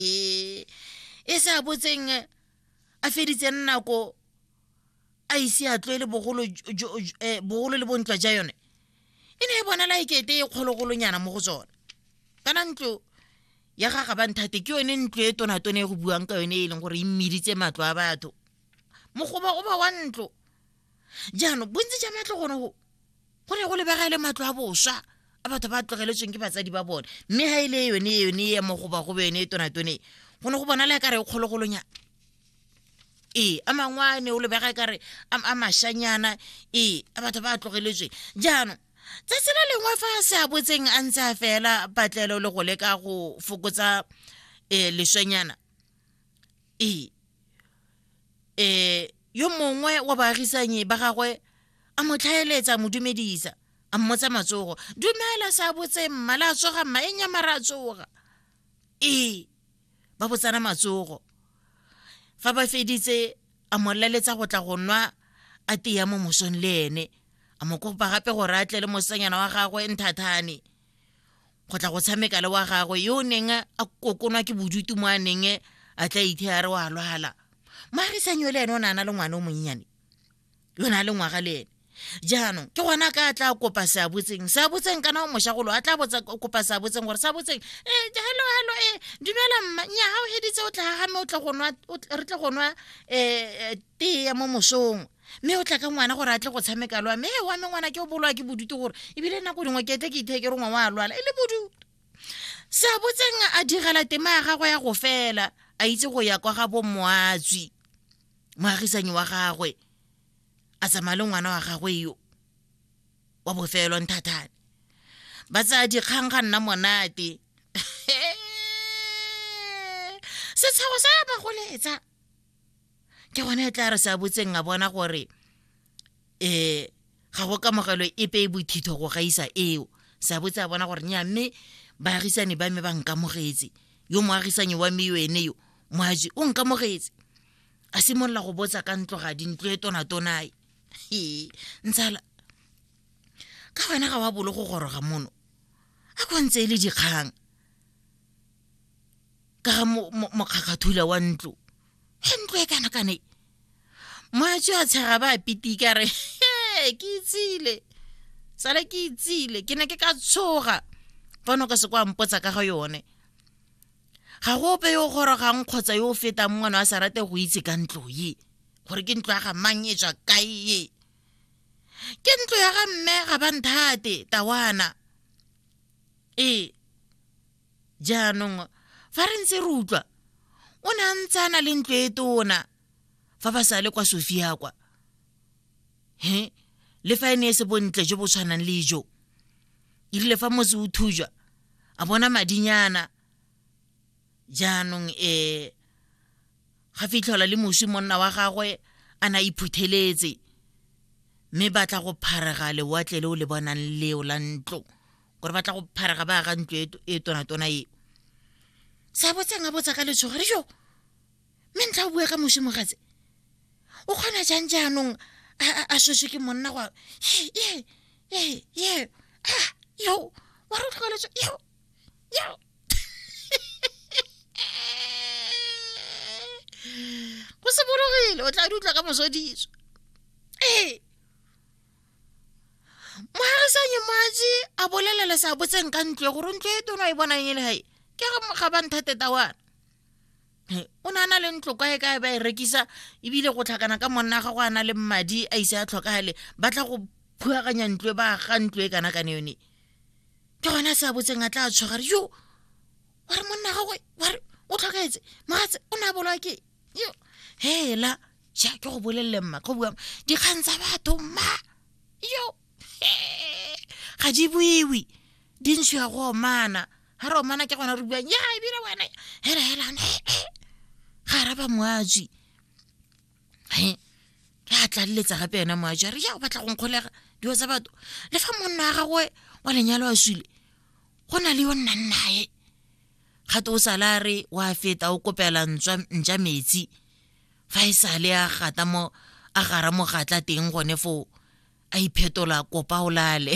e e sa botseng a feditseng nako a ise a tlwele bogolo jo- jo- jo- eh, bogolo le bontwa ja yone e ne e bonala e kete e kgologolonyana mo go tsone kana ntlo ya ga ga banthate ke yone ntlo e tonatone e go buang ka yone e leng gore e mmiditse matlo a batho mogoba o ba wa ntlo jaanong bontsi ja matlo gone go go ne go lebega e le matlo a boswa a batho ba tlogeletsweng ke batsadi ba bone mme ga e le yone yone e mo goba gobe yone e tonatone go ne go bona le kare e kgologolonyana ee a mangwe a ne o lebega e kare a mashanyana ee a batho ba tlogeletsweng jaanong tsatsi le lengwe fa a se a botseng a ntse a fela patlelo le go leka go fokotsa um leswenyana e e yo mongwe wa baagisanyi ba gagwe a mo tlhaeletsa mo dumedisa a mmotsa matsogo dumela sa botse mma la tsoga mma e nya mara tsoga e ba botsana matsogo fa ba feditse a mo laletsa go tla go nwa a teya mo mosong le ene a mo kopa gape gore a tle le mosanyana wa gagwe nthathane go tla go tshameka le wa gagwe yo o neng a kokonwa ke bodutu mo a neng a tla ithe a re wa lwala maagisanyo le ene o ne a na le ngwana o monnyane yo ne a le ngwaga le ene jaanong ke gona ka a tla kopa seabotseng seabotseng kana o moshagolo a tla botsa kopa seabotseng gore seabotseng e eh, hello hello e eh, dumela mma nya ga o heditse o tla gagame o tle go nwa re tle go nwa um tee ya mo mosong mme o tla ka ngwana gore a tle go tshameka lwa mme e wa me ngwana ke o bolwa ke bodutu gore ebile nako dingwe ke tle ke itheke rongwa wa lwala e le bodutu sa botseng a direla tema ya gagwe ya go fela a itse go ya kwa ga bommoatswi moagisanyi wa gagwe a tsamaya le ngwana wa gagwe yo wa bofelo nthathane ba tsaya dikgang ga nna monate setshago sa ya bagoletsa ke gone e tla re sa botseng a bona gore um ga go kamogelo epe e bothitho go gaisa eo sa botse a bona gore nya mme baagisane ba me ba nkamogetse yo moagisanyi wa me yo ene yo moaji o nkamogetse a simolola go botsa ka ntlo ga dintlo e tonatonae ee ntshala ka wena ga wa bolo go goroga mono a ko ntse e le dikgang ka ga mokgakgathula wa ntlo e ntlo e kana kane moatso a tshega ba pitika re ke itsile tsala ke itsile ke ne ke ka tshoga fa no ka se kwa mpotsa ka ga yone ga go ope yo o gorogang kgotsa yo o fetang mongwana wa sa rate go itse ka ntlo ye gore ke ntlo ya ga mang e tswa kae ye ke ntlo ya ga mme ga ba nthate tawana ee jaanong fa re ntse re utlwa o ne a ntse a na le ntlo e tona fa ba sa le kwa sofia kwa he le fa e ne e se bontle jo bo tshwanang le jo e rile fa motse o thujwa a bona madinyana jaanong um ga fitlhelwa le moswi monna wa gagwe a na iphutheletse mme batla go pharega lewatle le o le bonang leo la ntlo gore ba tla go pharega ba ga ntlo e, e tonatona e sa botsang a botsa ka letshogo re jo mme ntlha o bua ka mosi mogatse o kgona jang jaanong a soswe ke monna go ye ye ye ah, yo wa re tlhokaletso yo yo go se bologile o tla di utlwa ka mosodiso ee mogagisanye matsi a bolelela sa botseng ka ntle gore ntlo e tona e bonang e le gae ke ga ba nthate tawana o ne a na le ntlo kwa e kae ba e rekisa ebile go tlhakana ka monna ga go a na le madi a ise a tlhokagale ba tla go phugaganya ntlo e ba ga ntlo e kana kane yone ke gone a se a botseng a tla tshwagare yo wa re monna gagwe wa re o tlhokaetse mogatse o ne a bolwa ke yo hela ja ke go bolelele mma go bua dikgang tsa batho mma yo ga di buiwi di ntsho ya go omana ga re omana ke gona re buang ya ebile wena hela hela ga araba moaji he re a tlaleletsa gape yena moaji a re ya o batla go nkgolega dilo tsa batho le fa monna wa gagwe wa lenyalo a swile go na le yo nnang naye ga te o sale a re wa feta o kopela ntša metsi fa e sale a gata mo a gara mogatla teng gone foo a iphetola kopa o lale